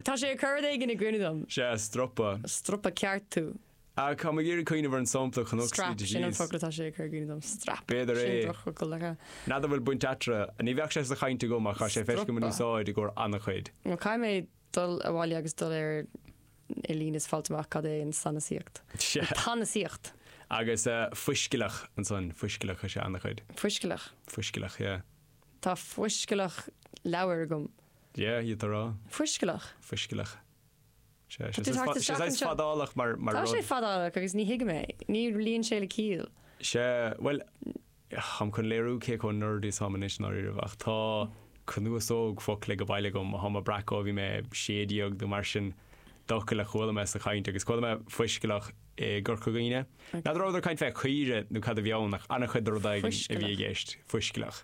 Tá sé ag cur rud éigin i gcuimhne dom. Sea, stropa. Stropa ceart thú. Ah, tá mé ag iarraidh cuimhneamh ar an sampla Canucks Strap, sin an disease. focal atá sé ag cur i gcuimhne dom. Strap. B'fhéidir é. Sin drochfhocal, ar a. N'fheadar bhfuil baint eatarthu. Ní bheadh sé sa chaint agam ach tá sé feiscithe agam in Stropa. úsáid i gcomhair an-chuid. Bhuel, caithfidh mé dul abhaile agus dul ar ar líne is fáilt amach cad é an sanasaíocht. Sea. An tsanasaíocht. Agus eh, fuiscealach ansan, fuiscealach, tá sé an-chuid. Fuiscealach. Fuiscealach, yeah. Tá fuiscealach leabhar agam. Yeah, you throw. Fuiscealach. Fuiscealach. Sea, Tá tú she's thart isteach saghas anseo. fadálach mar Tá rud. sé fadálach agus ní thuigim é. Ní luíonn sé le ciall. Sea, bhuel, táim chun léiriú cé chomh nerdy is táim anois, i ndáiríribh, ach tá cnuasóg focal ag a bhaile agam, atáim ag breacadh ó bhí mé sé déag nó mar sin, d'fhocail a chuala mé sa chaint, agus chuala mé fuiscealach i gCorca Dhuibhne. N'fheadar a rabhadar ag caint fé chaoire nó cad a bhí ann, ach an-chuid de rud éigin a bhí i Fuiscealach. gceist. Fuiscealach.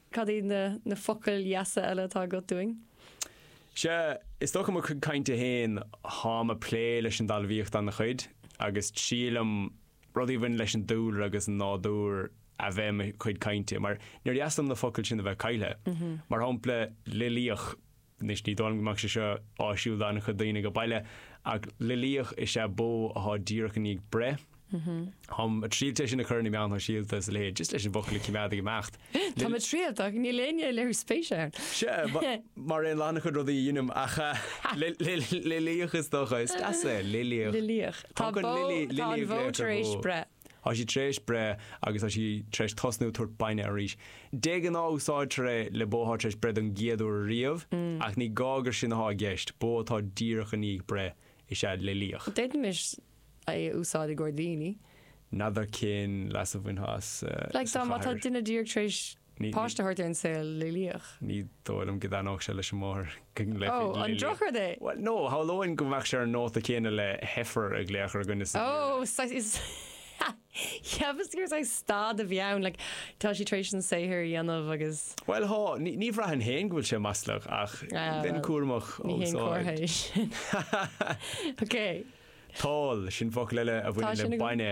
Cad iad na focail dheasa eile atá agat dúinn? Sea, is dócha mo chuid cainte féin, táim ag plé leis an dtalmhaíocht ana-chuid, agus taitníonn liom rudaí a bhaineann leis an dúlra agus an nádúr a bheith i mo chuid cainte, mar níor dheas liom na focail sin a bheith caillthe. Mar shampla, loilíoch. Anois ní dóigh liom go mbeadh sé seo áisiúil d'an-chuid daoine ag baile, ach loilíoch is ea bó athá díreach i ndiaidh breith. Táim ag triailt é sin a chur ar na meáin shóisialta is a leithéid, just leis an bhfocal a choimeád ag imeacht. Tá tú ag triailt ach níl éinne ag léiriú spéise ann. Sea, mar aon le an-chuid rudaí a dheinim, ach loilíoch is dócha, is deas é, loilíoch. Loilíoch. Tá bó, tá an bhó tar éis breith. Tá sí tar éis breith agus tá sí tar éis tosnú ag tabhairt bainne arís. De ghnáth úsáidtear é le bó atá tar éis breith don gcéad uair ariamh, ach ní gá gur sin atá i gceist, bó atá díreach i ndiaidh breith is ea loilíoch. D'fhéadfaimis é a úsáid i gcomhair daoine. N'fheadar cén leas a bhainfeá as sa chathair. Like, má tá duine díreach tar éis páiste a thabhairt ar an saol, loilíoch. Ní dóigh liom go dtaitneodh sé leis an máthair go nglaofaí loilíoch. Ó, an drochrud é? Bhuel, no, shamhlóinn go mbeadh sé ar an nóta céanna le heifer a glaoch ar dhuine sa Bhéarla. Ó, saghas, is, cheapas gur saghas stad a bhí ann, like, tá sí tar éis an saothar a dhéanamh agus. Bhuel, há, ní bhraithfinn féin go bhfuil sé maslach, ach bheinn cúramach á úsáid. Ní haon comhartha é sin. Ok. Tál, sin focal eile a bhaineann le bainne.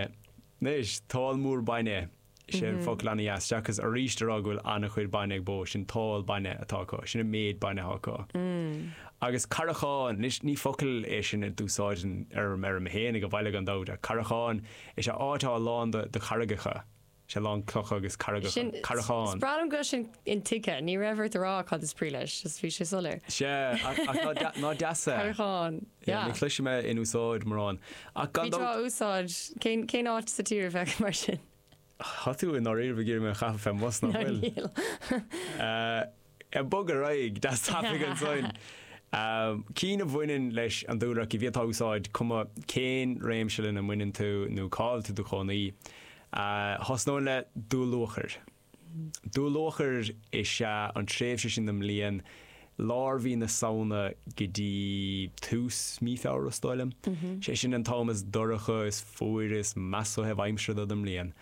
Anois, tál mór bainne. Is é an focal ana-dheas-deacas arís a rá go bhfuil ana-chuid bainne ag bó, sin tál bainne atá acu, sin an méid bainne atá acu. Agus carrachán, anois ní focal é sin a d'úsáidfinn ar an fheirm féin ag an bhaile gan dabht, ach carrachán, is ea áit atá lán de, de charraigeacha, is ea lán clocha agus carraigeacha, carrachán. Sin, is breá liom go bhfuil sin intuigthe, ní raibh ort a rá cad is brí leis, just bhí sé soiléir. Sea, ach ná deas é? Carrachán. Yeah, ní chloisim é in úsáid mórán. Ach gan dabht. Bhí tráth úsáid. Cén, cén áit sa tír a bheadh mar sin? Tá tú i ndáiríre ag iarraidh mé a chaitheamh fé mbus nach bhfuil? Níl. Ag bogadh ar aghaidh, go tapaidh ansoin. Cinn a bhaineann leis an dúlra ach a bhféadfá a úsáid, cuma cén réimse lena mbaineann tú nó cá bhfuil tú i do chónaí, thosnóinn le dúluachair. Dúluachair is ea an tréimhse sin den mbliain, lár mhí na Samhna go dtí tús mí Feabhra is dóigh liom. Sé sin an t-am is dorcha, is fuaire, is measa ó thaobh aimsire den mbliain.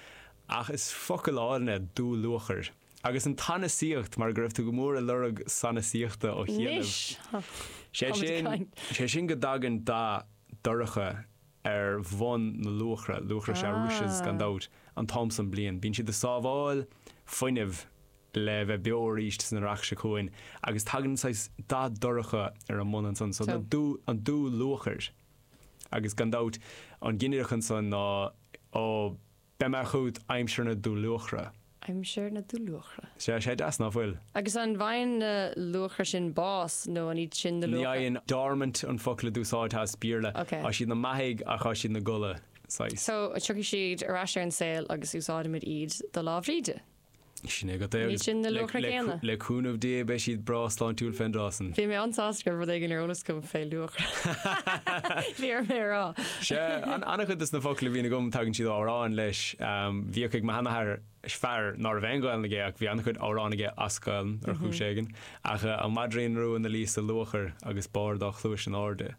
Ach is focal álainn é dúluachair. Agus an tsanasaíocht, mar go raibh tú go mór ag lorg sanasaíochta ó chianaibh. Sé sin, sé sin go dtagann dath dorcha ar bhonn na luachra, luachra is ea rushes gan dabht, an t-am san bliain. Bíonn siad ag sábháil fuinnimh le bheith beo arís san earrach seo chugainn agus tagann saghas dath dorcha ar a mbun ansan so, an dúluachair. Agus gan dabht, an ginideach ansan ná, oh, Beidh mé chugat aimsir na dúluachra. aimsir na dúluachra. Sea, sé deas, ná fuil? Agus an bhfaigheann na luachra sin bás, nó an iad sin na luachra? Ní fhaigheann. Dormant an focal a d'úsáidfeá as Béarla. Ok. Tá siad ina mbeathaigh, ach tá siad ina gcodladh, saghas. So, tiocfaidh siad ar ais ar an saol agus úsáidfimid iad do Lá Bhríde? Sin é agat. Ní sin na luachra céanna. Le cúnamh Dé beidh siad breá sláintiúil fén dtráth san. Bhí mé an-sásta go raibh rud éigin ar eolas agam fé luachra. Bhí orm é a rá. Sea, an-chuid de na focla a bhíonn agam tagann siad ó amhráin leis. Bhíodh ag mo sheanathair, fear ná raibh aon Ghaelainn aige ach bhí an-chuid amhrán aige as Gaelainn ar chúis éigin, ach An Maidrín Rua 'na luí sa luachair agus barr a dhá chluais in airde.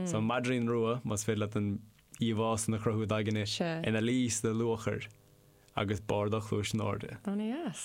So An Maidrín Rua, más féidir leat an. íomhá san a chruthú i d'aigne ina luí sa luachair agus barr a dhá chluais in airde. Ana dheas.